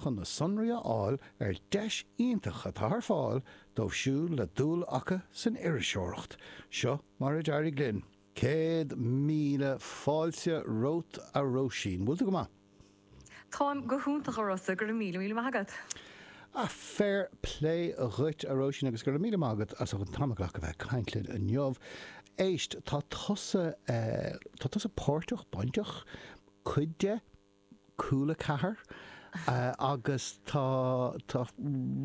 chun na sonraí a fháil ar dheis iontach atá ar fáil dóibh siúd a bhfuil dúil acu san iriseoireacht. Seo mar a d'éirigh linn. Céad míle fáilte romhat a Róisín. Bhfuil tú go maith? Táim go hiontach a Rossa, go raibh míle míle maith agat. Ah, fair plé dhuit a Róisín agus go raibh míle maith agat as an t-am a ghlacadh bheith ag caint linn inniu. Éist, tá tusa, tá tusa páirteach, bainteach, cuid de, cúl a ceathair agus tá tá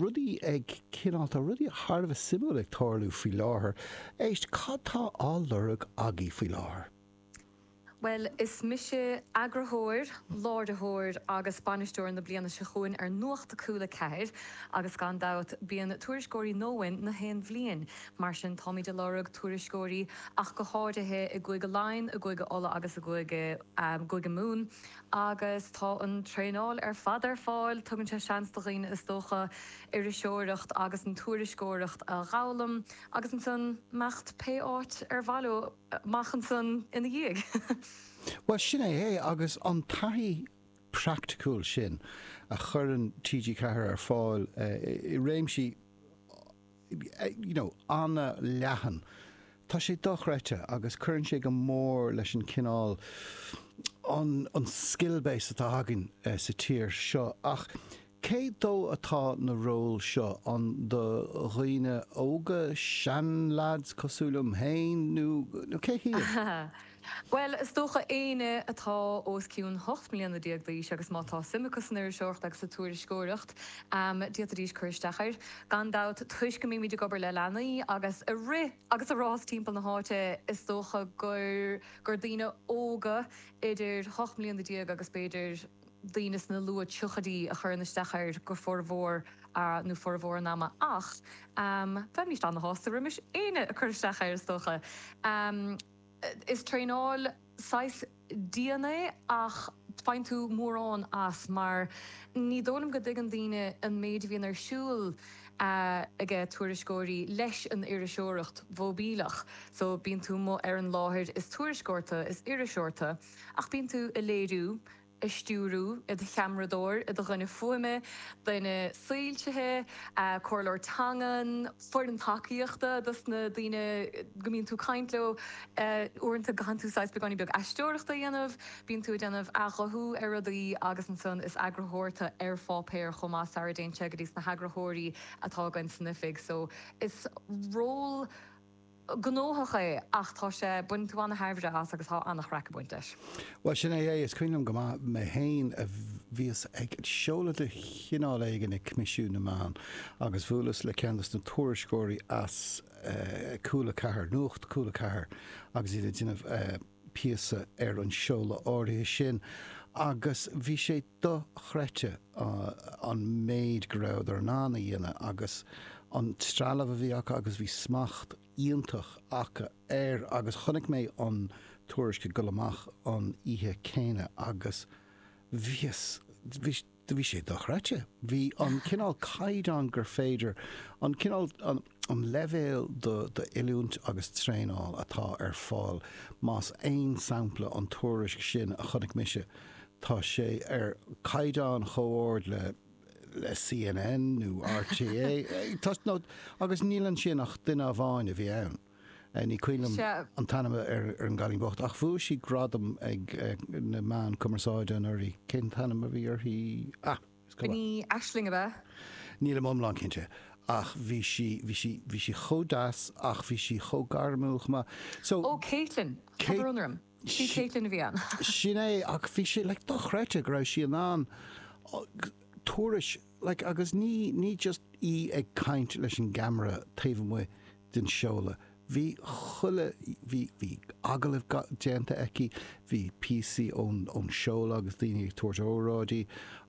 rudaí ag cineál tá rudaí thar a bheith suimiúil ag tarlú faoi láthair. Éist, cad tá á lorg agaí faoi láthair? Bhuel, is mise eagarthóir, láiritheoir agus bainisteoir na bliana seo chugainn ar Nuacht Cúl a Ceathair agus gan dabht bíonn tuairisceoirí uainn na haon bhliain, mar sin táimid ag lorg tuairisceoirí ach go háirithe i gCúige Laighean, i gCúige Uladh agus i gCúige. gCúige Mumhan, agus tá an traenáil ar fad ar fáil. Tugann sé seans do dhaoine, is dócha, an iriseoireacht agus an tuairisceoireacht a dh'fhoghlaim agus ansan imeacht pé áit ar mhaith leo amach ansan ina dhiaidh. Bhuel, sin é é, agus an taithí praiticiúil sin a chuireann TG4 ar fáil i réimsí. you know, an-leathan. Tá sé dochreidte agus cuireann sé go mór leis an cineál, an, an skill base atá againn sa tír seo ach cé dó atá na ról seo, an do dhaoine óga, seanleaids cosúil liom féin nó cé hiad? Bhuel, is dócha éinne atá os cionn hocht mbliana déag d'aois agus má tá suim acu san iriseoireacht agus sa tuairisceoireacht, d'fhéadfaidís cur isteach air. Gan dabht, toisc go mbímid ag obair le leanaí agus a' rith agus a' rás timpeall na háite, is dócha gur, gur daoine óga idir hocht mbliana déag agus b'fhéidir daoine sna luath triochaidí a chuireann isteach air go formhór nó formhór an ama ach, bheimist ana-shásta roimis éinne a' cur isteach air is dócha. Is traenáil saghas dian é ach faigheann tú mórán as mar ní dóigh liom go dtuigeann daoine an méid a bhíonn ar siúl aige tuairisceoirí leis an iriseoireacht mhóibíleach so bíonn tú amuigh ar an láthair is tuairisceoir tu is iriseoir tu ach bíonn tú a' léiriú ag stiúradh, i do cheamaradóir, i do dhuine fuaime, duine soilsithe, comhairleoir teangan, foireann tacaíochta dos na daoine go mbíonn tú ag caint leo, uaireanta go gcaitheann tú saghas beagáinín beag aisteoireachta a dhéanamh, bíonn tú ag déanamh athghuthú ar rudaí agus ansan is eagarthóir tu ar pháipéar chomh maith sara dtéann sé go dtí na heagarthóirí atá againn san oifig so is ról gnóthach é ach tá sé, baineann tú an-tairbhre as agus tá an-chraic ag baint leis. Bhuel, sin é é. Is cuimhin liom go maith mé féin bhíos ag seoladh de chineál éigin ag Coimisiún na Meán agus bhuaileas le ceann dos na tuairisceoirí as Cúl 4, Nuacht Cúl 4 agus iad ag déanamh píosa ar an seoladh áirithe sin agus bhí sé dochreidte an méid go rabhadar in ann a dhéanamh agus an trealamh a bhí acu agus bhí smacht iontach acu air agus chonaic mé an tuairisc ag dul amach an oíche céanna agus bhíos, bhí sé dochreidte. Bhí an cineál caighdeán gur féidir, an cineál, an. an leibhéal d'oiliúint agus traenáil atá ar fáil, más aon sampla an tuairisc sin a chonaic mise, tá sé ar chaighdeán chomh-ard le le CNN nó RTÉ, tá agus níl ansin ach duine amháin a bhí ann, ní cuimhin liom an t-ainm ar ar an gcailín bocht, ach bhuaigh sí gradam ag na meáin cumarsáide anuraidh, cén t-ainm a bhí uirthi? Ah! Ní Aisling ab ea? Nílim iomlán cinnte, ach bhí sí, bhí sí, bhí sí chomh deas ach bhí sí chomh gairmiúil chomh maith. So, Ó, Caitlin! Tá brón orm. Sí Caitlin a bhí ann. Sin é, ach bhí sí, like, dochreidte go raibh sí in ann tuairisc, like, agus ní, ní just í ag caint leis an gceamara taobh amuigh den seoladh. Bhí chuile, bhí, bhí agallaimh déanta aici, bhí píosaí ón, ón seoladh agus daoine ag tabhairt óráidí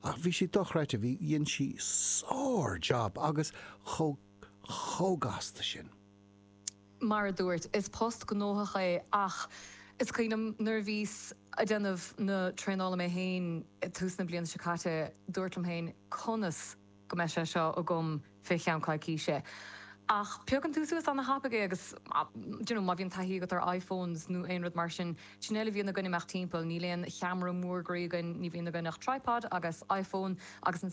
ach bhí sé dochreidte, bhí, dhein sí sár-jab agus chomh, chomh gasta sin. Mar a dúirt, is post gnóthach é ach is cuimhnim nuair a bhíos a' déanamh na traenála mé féin ag tús na bliana seo caite, dúrt liom féin conas, go mbeidh sé seo agam fé cheann coicíse ach piocann tú suas ana-thapaidh é agus d'you know má bhíonn taithí agat ar iPhones nó aon rud mar sin, sin a bhfuil a bhíonn againn ag imeacht timpeall, níl aon cheamara mór groí againn, ní bhíonn againn ach tripod agus iPhone agus.